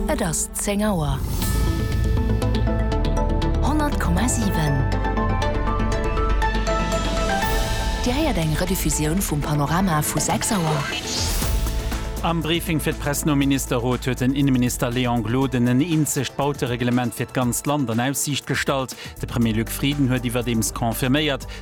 Et ass zéng Auer. Honnert Komma siwen. Dir héiert eng Rediffusioun vum Panorama vu sechs Auer. Am Briefing fir d'Press nom Ministerrot huet den Inneminister Léon Gloden en eenzegt Bautereglement fir d'ganzt Land an Aussiicht gestallt. De Premier Luc Frieden huet iwwerdeems confirméiert,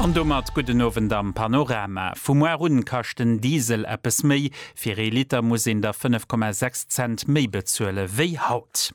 An domat gudden Owend am Panorama. Vum Moar un kascht den Diesel eppes méi, fir ee Liter muss een der 5,6 Cent méi bezuele wéi haut.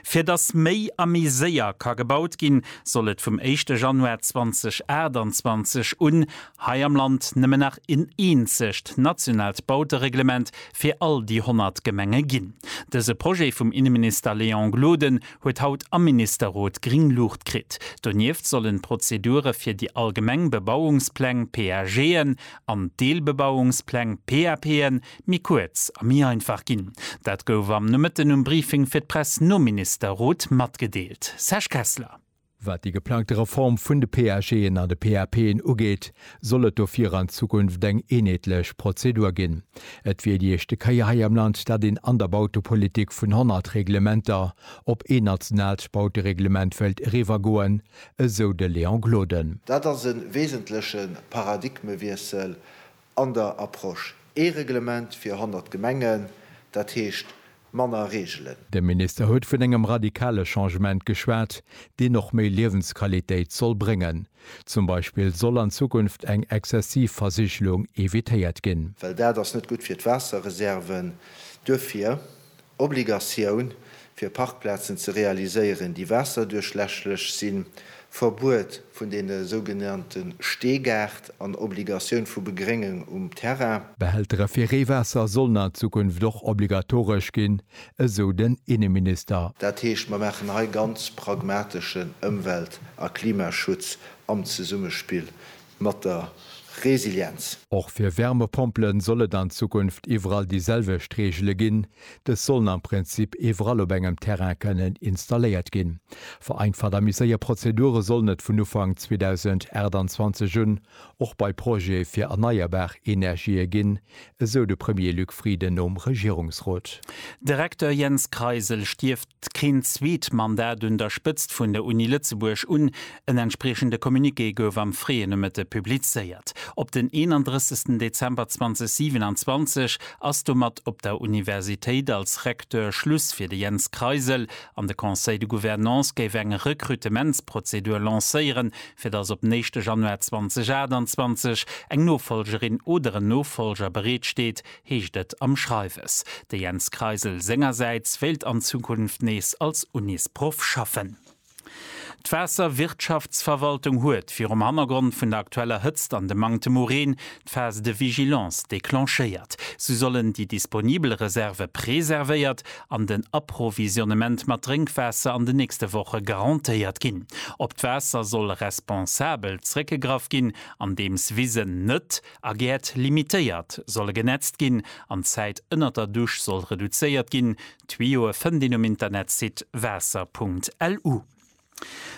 Fir datt méi a méi séier ka gebaut ginn, soll et vum éischte Januar 2028 un hei am Land nëmmen nach en eenzegt nationaalt Bautereglement fir all déi 100 Gemenge ginn. Dëse Projet vum Inneminister Léon Gloden huet haut am Ministerrot gring Luucht kritt. Donieft sollen d'Prozedure fir déi allgemeng Bebauungspläng, PAGen, an d'Deelbebauungspläng, PAPen, méi kuerz a méi einfach ginn. Dat gouf am Nomëtten um Briefing fir d'Press nom Ministerrot matgedeelt. Serge Kessler. Wat déi geplangte Reform vun de PAGen an de PAPen ugeet, soll et dofir an Zukunft eng eenheetlech Prozedur ginn. Et wier déi éischte Kéier hei am Land, dat een an der Bautepolitik vun 100 Reglementer op een nationaalt Bautereglement wéilt eriwwergoen, esou de Léon Gloden. Dat ass e wesentleche Paradigmewiessel an der Approche ee Reglement fir 100 Gemengen, dat heescht manner Reegelen. De Minister huet vun engem radikale Changement geschwat, deen och méi Liewensqualitéit soll bréngen. Zum Beispill soll an Zukunft eng exzessiv Versigelung evitéiert ginn. Well dat ass net gutt fir d'Waasserreserven. Duerfir. Obligatioun, fir Parkplazen ze realiséieren, déi waasserduerchläschlech sinn, Verbuet vun deene sougenannte Steegaart an Obligatioun vu Begréngung um Terrain. Behältere fir Reewaasser sollen an Zukunft och obligatoresch ginn, esou den Inneminister. Dat heescht, mer maachen hei ganz pragmateschen Ëmwelt a Klimaschutz am Zesummespill mat der Resilienz. Och fir Wärmepompele soll et an Zukunft iwwerall déi selwecht Reegele ginn. Dës sollen am Prinzip iwwerall op engem Terrain kënnen installéiert ginn. Vereinfacht a méi séier Prozedure sollen et vun Ufank 2028 un och bei Projete fir erneierbar Energië ginn, esou de Premier Luc Frieden nom Regierungsrot. De Recteur Jens Kreisel stierft keen zweet Mandat un der Spëtzt vun der Uni Lëtzebuerg un. En entspriechende Communiqué gouf am fréie Nomëtte publizéiert. Op den 31 Dezember 2027 ass domat op der Universitéit als Recteur Schluss fir de Jens Kreisel an de Conseil de Gouvernance géif eng Rekrutementsprozedur lancéieren fir dass op den éischte Januar 2028 eng Nofolgerin oder en Nofolger bereet steet, heescht et am Schreiwes. De Jens Kreisel sengersäits wéilt an Zukunft nees als Unisproff schaffen. D'Waasserwirtschaftsverwaltung huet, virum Hannergrond vun der aktueller Hëtzt an dem Manktem u Reen, d'Phase de vigilance declenchéiert. Sou sollen déi disponibel Reserve preservéiert an den Approvisionnement mat Drénkwaasser an den nächste Woche garantéiert ginn. Op d'Waasser soll responsabel zréckgegraff ginn, andeems Wisen net a Gäert limitéiert solle genetzt ginn an d'Zäit ënnert der Dusch soll reduzéiert ginn. D'Tuyoe fënnt een um Internetsite waasser.lu.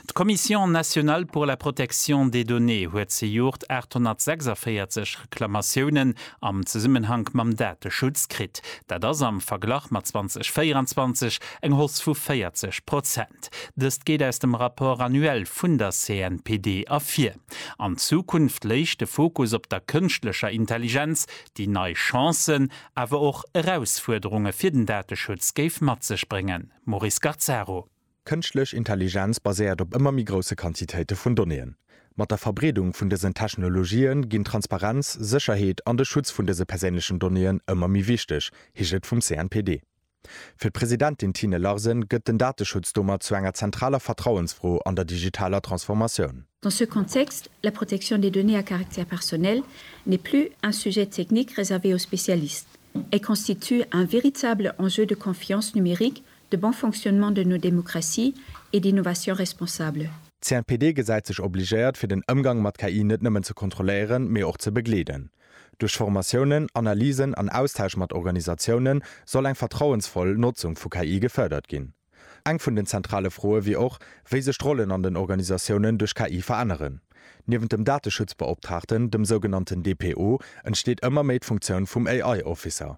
D'Commission nationale pour la protection des données huet zejoert 846 Reklamatiounen am Zesummenhank mam Dateschutz kritt. Dat ass am Verglach mat 2024 eng Hoss vu 40 Prozent. Dëst geet aus dem Rapport annuel vun der CNPD ervir. An Zukunft léich de Fokus op der kënschtlecher Intelligenz, déi nei Chancen, awer och Erausfuerderunge fir den Dateschutz géif mat sech bréngen. Maurice Gazzaro. Kënschtlech Intelligenz baséiert op ëmmer méi grousse Quantitéite vun Donnéeën. Mat der Verbreedung vun dësen Technologië ginn Transparenz, Sécherheet an de Schutz vun dëse perséinlechen Donnéeën ëmmer méi wichteg, heescht et vum CNPD. Fir d'Presidentin Tine Larsen gëtt den Dateschutz domat zu enger zentraler Vertrauensfro an der digitaler Transformatioun. Dans ce contexte, la protection des données à caractère personnel n'est plus un sujet technique réservé aux spécialistes. Elle constitue un véritable enjeu de confiance numérique De bon fonctionnement de nos démocraties et d'innovations responsables. D'CNPD gesäit sech obligéiert, fir den Ëmgang mat KI net nëmmen ze kontrolléieren, mee och ze begleeden. Duerch Formatiounen, Analysen an Austausch mat Organisatiounen soll eng vertrauensvoll Notzung vu KI gefërdert ginn. Eng vun den zentrale Froe wier och, wéi sech d'Rollen an den Organisatiounen duerch KI veränneren. Niewent dem Dateschutzbeoptraagten, dem sougenannten DPO, entsteet ëmmer méi d'Funktioun vum AI-Officer.